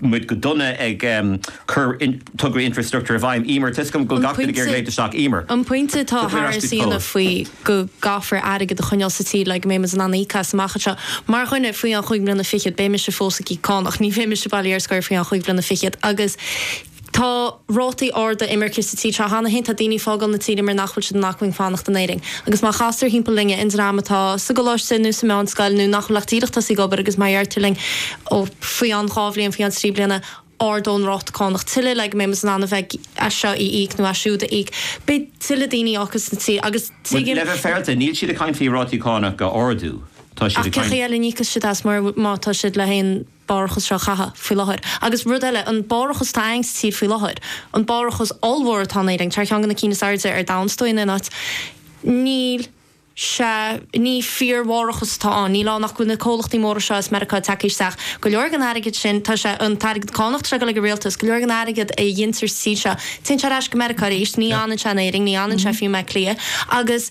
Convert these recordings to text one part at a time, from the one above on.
muid go dona ag cur tograí infreastruchtúir i bhfeidhm. Emer, toisc go bhfuil gach duine ag iarraidh léimt isteach. Emer. An pointe atá tar éis a dhéanamh faoi go gcaithfear airgead a choinneáil sa tír le go mbeidh muid in ann íoc as amach anseo. Mar dhuine faoi cheann chúig bliana fichead, beidh mise fós ag íoc cánach, ní bheidh mise bailithe ar scor faoi cheann chúig bliana fichead agus Tá rátaí arda imirce sa tír seo cheana féin. Tá daoine ag fágáil na tíre mar nach bhfuil siad in acmhainn fanacht in Éirinn. Agus má chastar thimpeall linn, an dream atá sa gcoláiste nó sa mheánscoil nó nach bhfuil ach díreach tosaithe ag obair agus má deirtear linn, ó, faoi cheann dhá bhliain, faoi cheann trí bliana, ardóidh an ráta cánach tuilleadh le go mbeidh muid in ann a leithéid seo a íoc nó siúd a íoc, beidh tuilleadh daoine á gcur as an tír agus tuigim. Le bheith féaráilte, níl siad ag caint faoi rátaí cánach a ardú, tá siad ag caint. Ach cé chaoi eile a n-íocfas siad as má tá siad leis an. barrachas seo a chaitheamh faoi láthair. Agus rud eile, an barrachas atá againn sa tír faoi láthair, an barrachas ollmhór atá in Éirinn, tá sé ar cheann de na cinn is airde ar domhan, is dóigh, in aon áit, níl sé, ní fíorbharrachas atá ann, níl ann ach go bhfuil na comhlachtaí móra seo as Meiriceá tagtha isteach, go leor den airgead sin, tá sé, an t-airgead cánach atá ag dul ag an rialtas, go leor den airgead a ghintear sa tír seo, téann sé ar ais go Meiriceá arís, ní fhanann sé in Éirinn, ní fhanann sé fiú i mBleá Cliath. Agus.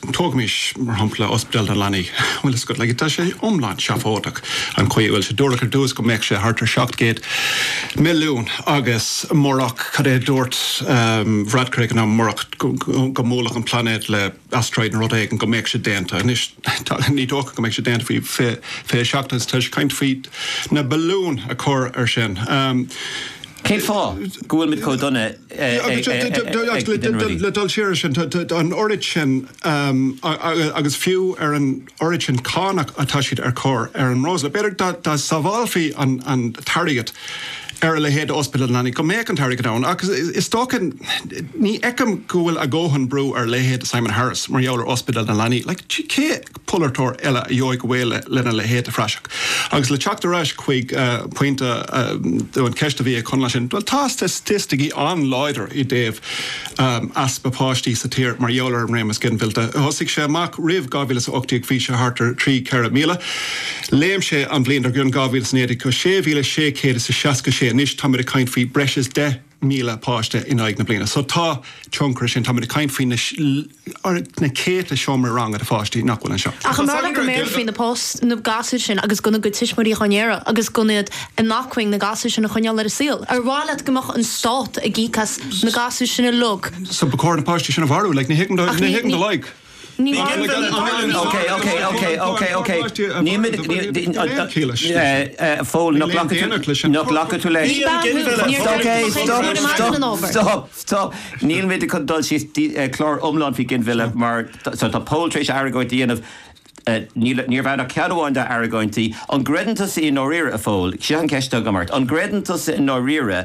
Tógaimis, mar shampla, Ospidéal na Leanaí. Bhuel, is go, tá sé iomlán seafóideach an chaoi a bhfuil sé. Dúradh ar dtús go mbeadh sé thart ar seacht gcéad milliún agus murach, cad é a dúirt Varadkar ag an am, murach go mbuailfeadh an plainéad le asteroid nó rud éigin, go mbeadh sé déanta. Anois, ní dócha go mbeidh sé déanta faoi 27 agus tá sé ag caint faoi na billiúin a chur ar sin. Cén fáth go bhfuilimid chomh dona? Le dul siar air sin, tá an oiread sin, agus fiú ar an oiread sin cánach atá siad a chur ar an mbreosla, b'fhéidir dá sábhálfaí an t-airgead ar a leithéid d'ospidéal na leanaí go mbeadh an t-airgead ann. Ach is dócha, ní fheicim go bhfuil a ndóthain brú ar a leithéid de Simon Harris mar gheall ar ospidéal na leanaí. Polaiteoir eile a gheobhadh away lena leithéid de phraiseach. Agus le teacht ar ais chuig pointe, an cheist a bhí ag Conall ansin, bhuel, tá staitisticí an-láidir i dtaobh easpa páistí sa tír mar gheall ar an réimeas ginmhillte. Thosaigh sé amach roimh 2018 bhí sé thart ar thrí, ceithre míle. Léim sé an bhliain dar gcionn, 2019, go sé mhíle sé chéad is a seasca sé. Anois tá muid ag caint faoi breis is deich. míle páiste in aghaidh na bliana. So tá tionchar air sin. Tá muid ag caint faoi na céadta seomraí ranga do pháistí nach bhfuil anseo. Ach an amhlaidh go mbéarfaí na, na gasúir sin agus gan a gcuid tuismitheoirí in ann aire agus gan iad in acmhainn na gasúir sin a choinneáil ar an saol? Ar mhaith leat go mbeadh an stát ag íoc as na gasúir sin uilig? So ba chóir na páistí sin a mharú? Like ní thuigim do, ní thuigim do loighic. Ní bhfuair mé an t-ainm seo. Cé a bhí páirteach i bpáirtithe an Bhéarla Cheoil sin? Níl aon dealramh leis an tuairim. Ní bean thú. Níor chuir tú chun cinn ar an mbean an ábhar. Stop! Stop! Níl mé chun dul síos clár iomlán faoi ginmhilleadh mar tá Pól tar éis argóint a dhéanamh. Níl, níorbh ann ach ceann amháin dá argóintí. An gcreideann tusa i ndáiríre, a Phóil, seo an cheist agam ort, an gcreideann tusa i ndáiríre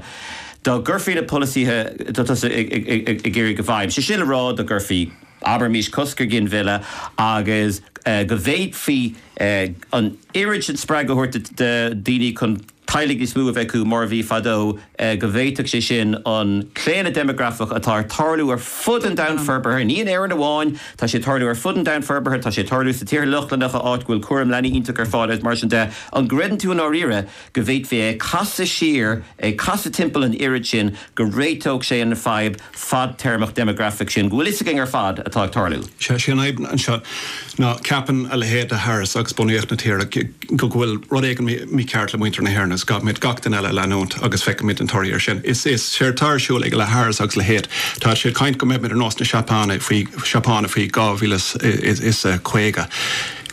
dá gcuirfí na polasaithe atá tusa ag iarraidh i bhfeidhm, sé sin le rá dá gcuirfí, Abraimís cosc ar ghinmhilleadh agus go bhféadfaí an oiread sin spreagadh a thabhairt do dhaoine chun teaghlaigh níos mó a bheith acu, mar a bhí fadó, go bhféadfadh sé sin an claonadh deimeagrafach atá ag tarlú ar fud an domhain forbartha, ní in Éirinn amháin, tá sé ag tarlú ar fud an domhain forbartha, tá sé ag tarlú sna tíortha Lochlannacha áit go bhfuil cúram leanaí iontach ar fáil agus mar sin de, an gcreideann tú i ndáiríre go bhféadfaí é a chasadh siar, é a chasadh timpeall an oiread sin go réiteodh sé an fadhb? fadtéarmach déimeagrafach sin go bhfuil fhios againn ar fad atá ag tarlú. Is é an fhadhb anseo ná ceapann a leithéid de Harris agus bunaíocht na tíre go go bhfuil rud éigin mícheart le muintir na hÉireann agus caithfimid gach duine eile a leanúint agus feicfimid an toradh ar sin. Is é atá ar siúl ag Harris agus a leithéid, tá sé ag caint go mbeimid ar nós na Seapáine faoi 2050.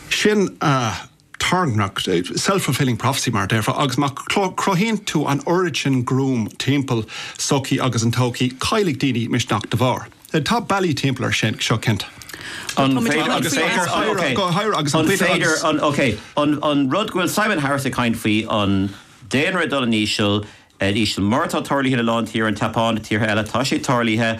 Sin a. tairngreacht, self-fulfilling prophecy mar a déarfá, agus má chruthaíonn tú an oiread sin gruaim timpeall an tsochaí agus an todhchaí, caillfidh daoine misneach da bharr. Tá bealaí timpeall air seo cinnte. An féidir, agus é ag caint, ok, go háirithe agus an féidir, agus an, ok, an rud go bhfuil Simon Harris ag caint faoi, an daonra ag dul in íseal, in íseal mar atá tarlaithe ina lán tír, an tSeapáin, tíortha eile, tá sé tarlaithe,